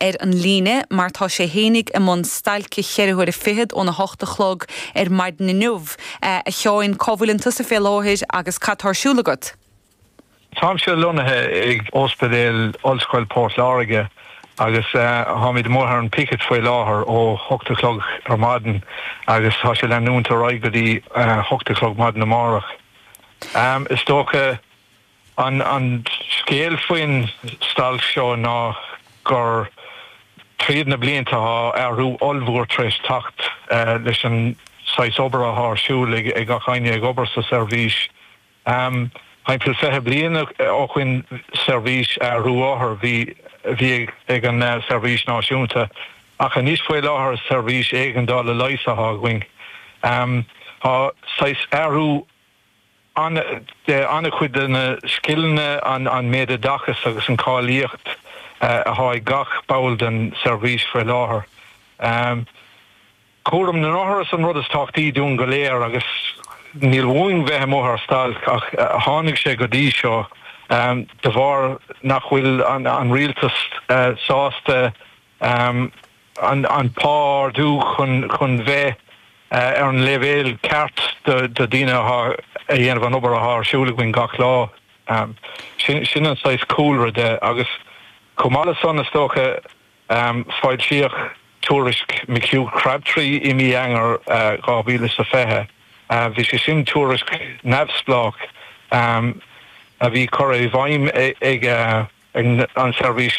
ar an líne mar tá sé féinig i mbun stailce cheithre huaire fichead ón a hocht a chlog ar maidin inniu. A Sheáin, cá bhfuil tusa fé láthair agus cad tá ar siúl agat? Táimse lonnaithe ag Óspidéal Ollscoil Port Láirge agus táimid amuigh ar an picket faoi láthair ó hocht a chlog ar maidin agus tá sé leanúint ar aghaidh go dtí hocht a chlog maidin amárach. Is dócha. An scéal faoin stailc seo ná gur tríd na blianta tá athrú ollmhór tar éis teacht leis an saghas obair athá ar siúl ag gach einne ag obair sa seirbhís. Thimpeall fiche bliain ó shoin seirbhís othar a bhí ag an seirbhís náisiúnta ach anois faoi láthair seirbhís éigeandála leighis athá againn. Tá saghas athrú. An-chuid de na scileanna, an méid oideachais agus an cáilíocht athá ag gach ball den seirbhís faoi láthair? Cúram na n-othar is an rud is tábhachtaí dúinn go léir agus níl uainn bheith amuigh ar stailc ach tháinig sé go dtí seo de bharr nach bhfuil an rialtas sásta An pá a ardú chun bheith ar an leibhéal ceart do dhaoine athá a dhéanamh an obair athá ar siúl againn gach lá. Sin an saghas cúlra de agus chomh maith le san is dócha foilsíodh tuairisc McHugh Crabtree i mí Eanáir 2020. Bhí sé sin tuairisc neamhspleách a bhí curtha i bhfeidhm ag an seirbhís